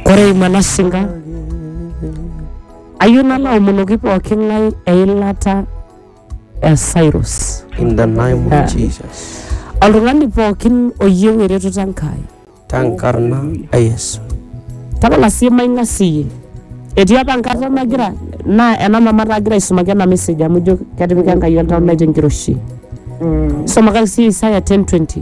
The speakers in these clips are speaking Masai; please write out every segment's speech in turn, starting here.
Ore eimu ena sinka, ayieu nalo aomonoki pooki ng'ae eilata e Cyrus. In the name Ah. of Jesus. Oltung'ani pookin oyieu eretoto Enkai. Tenkarna e Yesu. Tapala sii maing'asiyie. Etii apa enkata nagira naa ena mama taa agira aisumaki ena message amu ijo ketipika Enkai oltau lai tenkiroshi. Isomakaki sii Isaya 10:20.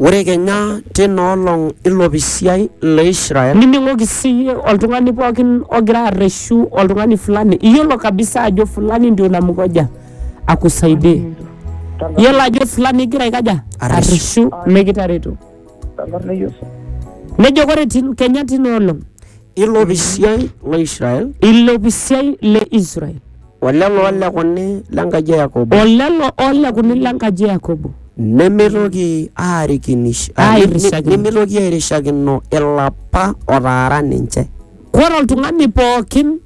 Ore kenya tina olong ilopisiai le Israel. Nining'oki siyie oltung'ani pookin ogira arreshu oltung'ani fulani, iyiolo kabisa ajo fulani ndio namgoja akusaidie. Iyiolo ajo fulani igira aikaja? Arreshu. Arreshu mikitareto. Nejo ore tin, kenya tina olong Ilo pisiai lo Israel ilo pisiai le Israel o lelo olekuni le nkaji e Yakobo o lelo olekuni le nkaji e Yakobo nemeitoki aarikinish Airishakino. nemeitoki airishakino ilapa otaara ninche. Kore oltung'ani pookin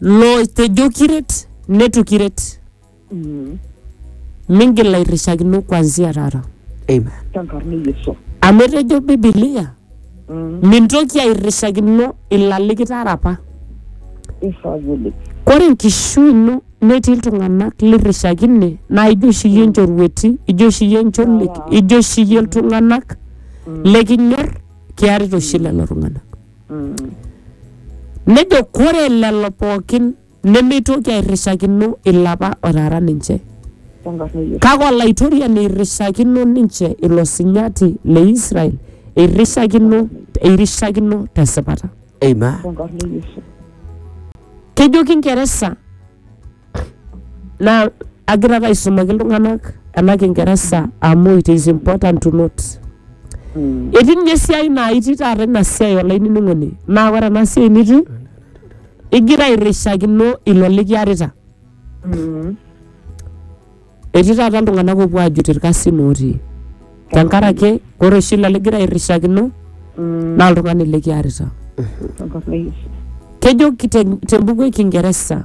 lotejo kiret, netu kiret. Mingil airrishakino kuanzia taata. Amen. Tenkarna e Yesu. Amu etejo Bibilia, mintoki airrishakino ilo alikitara apa. Eisavuli. Ore enkishui ino netii iltung'anak lirrishakine naa ijo oshi iyie nchorueti, ijo oshi iyie ncholik, ijo oshi iyie iltung'anak lekinyor, kiarita oshi lelo tung'anak. Nejo kore lelo pookin Nemeitoki airrishakino ilapa otaara ninche. Tenkarna e Yesu. Kake Olaitoriani eirrishakino ninche ilo sinyati le Israel, eirrishakino, eirrishakino te sipata. Amen. Tenkarna e Yesu. Kejo Kingeresa naa agira ake aisumaki iltung'anak ena Kingeresa amu it is important to note. Mm. Etii ninye esiai naa itii taata ina siai olainining'oni. Naa ore ena siai nitii Igira airrishakino ilo likiarita. Etii taata iltung'anak oopuo aajut irkasin ootii tenkaraki ore oshi ilo ligira airrishakino naa oltung'ani likiarita. Kejo te mbuku e kingeresa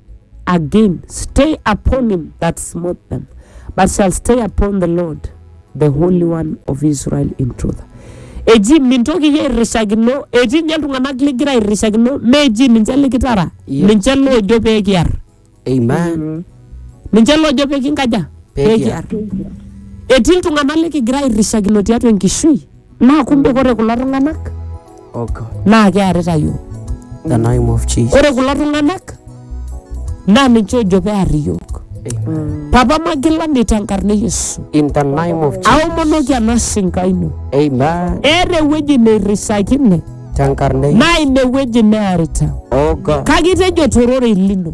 again stay upon him that smote them but shall stay upon the lord the holy one of israel in truth eji mintoki iyie airrishakino etii inye iltung'anak ligira airrishakino meji ninche likitara Yep. ninche loojo pee kiar Amen. ninche loojo pee kinkaja Pee pee kiar. kiar etii iltung'anak likigira airrishakino tiatua enkishui Naa kumbe ore kulo tung'anak Oh God, naa kearita iyiook. the name of Jesus. Ore kulo tung'anak naa ninche ojo pear iyiook. Amen. Papa magilani tenkarna e Yesu. In the name of Jesus. Aomonoki ena sinka ino. Amen. Eeta ewueji neirisakine Tenkarna e- naa ine wueji nearita. Oh God. Kake itejo tororei lino.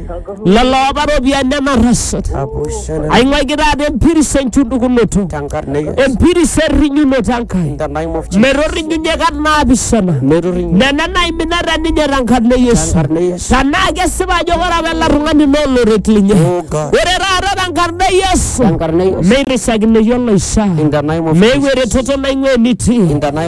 lelo opa ropiyiani nenarrasat Abushana. aing'uaiki taata empiris enchundukunoto Tankarna e Yesu. empiris errinyunoto Enkai In the name of Jesus. metorrinyunye kat naapishana Metorrinyunye. nena naiminata ninye tenkarna e Yesu Tenkarna e Yesu. tenaa kesipa ajo ore apa ele tung'ani naa oloret linye Oh God. ore taata tenkarna e Yesu Tenkarna e Yesu. meirrisakinoi oloishaa In the name of meeu Jesus. eretoto naing'ua enitii In the name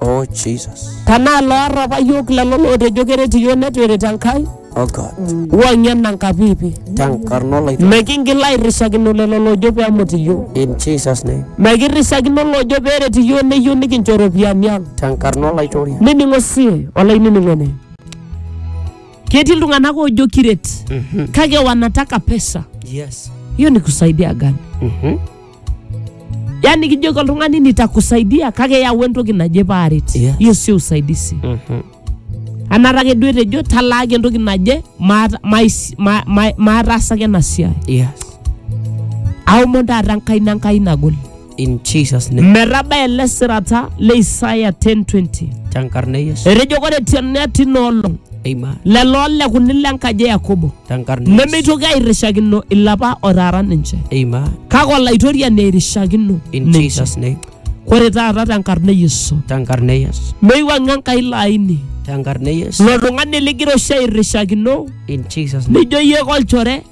Oh, Jesus. Tanaa loorrapa yiok lelo lootejo keret iyiok neitu eret Enkai, Oh, God. wang'ie ena nkapiipi. Tenkarna olaitwa. Mikingil airrishakino lelo loojo pee emut iyiok. In Jesus' name. Mikirrishakino loojo pee eret iyiok neyieu nikincho iropiyiani ang. Tenkarna olaitoria. Nining'o sii olainining'oni. Ketii iltung'anak oojo kiret kake wanataka pesa. Yes. Hiyo ni kusaidia gani? Mhm. yaani kijoki oltung'ani nitakusaidia kake yau entoki naje paaret Yes. hiyo sio usaidizi Mhm. anata ake duo etejo talaaki entoki naje maata- mais- ma- ma- maataasaki ena siai Yes. aomon taata enkaina enkai nagol In Jesus' name. metaba ele sirata le isaya 1020 Tenkarna e Yesu. etejo kore tiana tina olong Amen. lelo olekuni lenkaji e yakobo Tenkarna Yesu. nemeitoki airishakino ilapa otaara ninche Amen. kake olaitoriani airishakino In ninche Jesus' name. ore taata tenkarna e yesu Tenkarna Yesu. meiwang'a enkai laini Tenkarna Yesu. lo tung'ani ligira oshi airishakino In Jesus' name. nijo iyie kolchore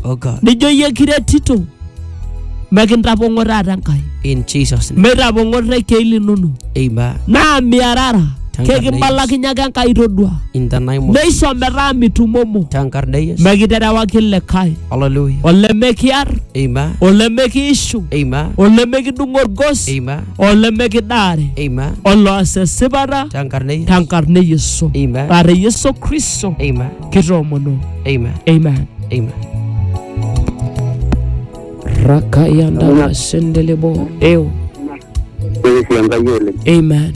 Oh God. nijo iyie kiretito mekintapong'o taata Enkai In Jesus' name. meitapong'o irrekiei linono Amen. naa miarara Tankarna kekibalakinye ake Enkai todua In the name of neisho metaa mitumomo Tankarna Yesu. mekiterewaki likae Hallelujah. olemekiar Amen. olemekiishu Amen. olemekidung'o orgos Amen. olemekidaare Amen. oloas esipata Tankarna Yesu. tenkarna e Yesu Amen. aa te Yesu Kristo Amen. kitoomono Amen. amen Amen. rakayanda sendelebo eo Keresia Enkai oleng. amen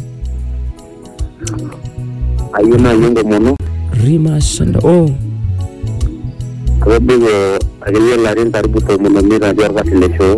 Ayieu naaji enkomono rima senda o atobiko akeyie ilarin karibu tomon omiet atii orkasi le shoo.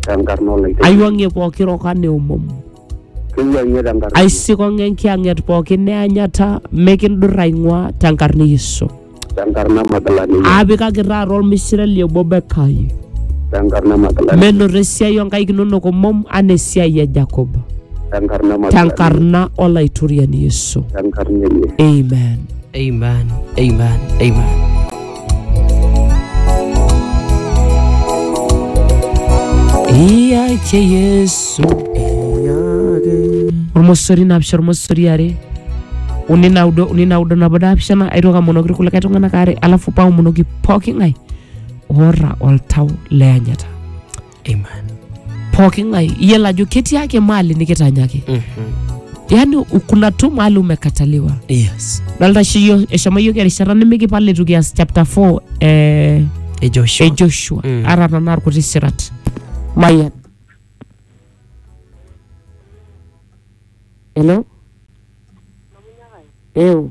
tenkarna olaiteng'eni. aiwang'ie pooki roka neomom Kiwuang'ie tenkarna. aisikong'e enkiyang'et pooki neanyata mikindur aing'ua tenkarna e yesu Tenkarna Magdalene. aapikaki taata olmishire li obo bekai Tenkarna Magdalene. menoto esiai onkaik inonok omom anaa esiai e jakob Tenkarna Magdalene. tenkarna olaitoriani yesu Tenkarna enye. amen Amen. Amen. Amen. iyake yesu ormosori napisha ormosori are uni naudo uni naudo nabo naapishana aitoki amonoki irkulikae tung'anak aare alafu paomonoki pooki ng'ae oota oltau leanyata Amen. pooki ng'ae iyiolo ajo ketii ake mali nikitanyaki Mhm. yaani kuna tu mali umekataliwa Yes. dolta oshi yiok eshomo yiok erishata nimikipal itu kias chapter 4 eh, E Joshua. e joshua Mm. ara tanaa irkuti sirat mayian hello eu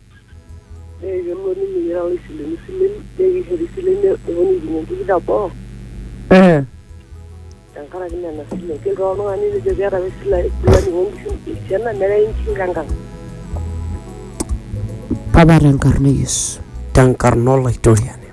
Ore kelo ninye ira oloisilenu isilen naa kishori isilen eponu aipim enkuku teboo Eh. tenkaraki nena silen. Kelotu ake oltung'ani nejo keeta apa esile fulani oonkishu esiana nerewi inkishu tenkang. Baba tenkarna e Yesu. Tenkarna Olaitoriani.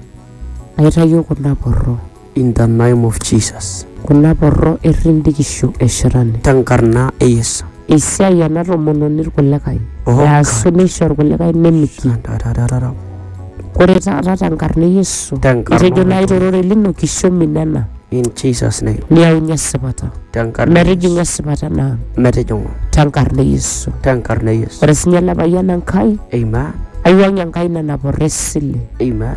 Aitayio kuna porro. In the name of Jesus. Kuna porro errin bikisho e shetani. Te nkarna e Yesu. Eisiai ena tomononi ilkulikae. Oh, Easu neisho ilkulikae nemitiki. Tatatata. Ore taata te nkarna e Yesu. Te nkarna Itejo nai oltung'ani. torore lino kisho minena. In Jesus name. Niyaunye esipata. Te nkarna e Metijing'u Yesu. esipata ena ang. Metijing'u. Te nkarna e Yesu. Te nkarna e Yesu. Ore sinye ele payian Enkai. Amen. Aiwuang'ie Enkai nena porro esile. Amen.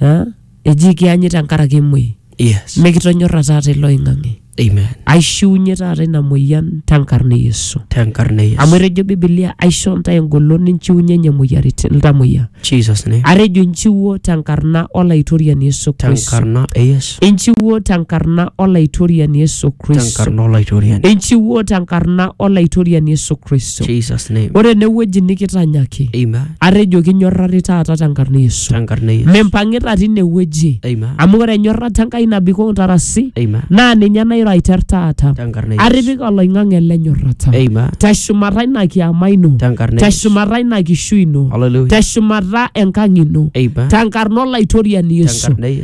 Ah, eji ikianyi tenkaraki emuoi Yes. mikitonyorra taata ilo oing'ang'e Amen. aishiunye taata ina moyian tenkarna e yesu Tenkarna e Yesu. amu etejo bibilia aisho ntae engolon ninchiunyenye moyiaritin iltamoyia Jesus name. atejo inchiwuo tenkarna olaitoriani yesu kristo Tenkarna e Yesu. Christ. Inchiwuo tenkarna Olaitoriani Yesu Kristo. Tenkarna Olaitoriani. Inchiwuo tenkarna Olaitoriani Yesu Kristo. Jesus name. Ore enewueji nikitanyaki, Amen. atejo kinyorrari taata tenkarna Yesu. Tenkarna Yesu. Mimpang'ita tine wueji, Amen. amu ore enyorrata Enkai nabikoo intarasi, Amen. naa ninye nairo aiter taata. Tenkarna Yesu. Atipika oloing'ang'e ele nyorrata. Amen. Teshumata ina kiama ino, Tenkarna Yesu. teshumata ina kishui ino, Hallelujah. teshumata enkang' ino, Amen. tenkarna Olaitoriani Yesu. Tenkarna Yesu.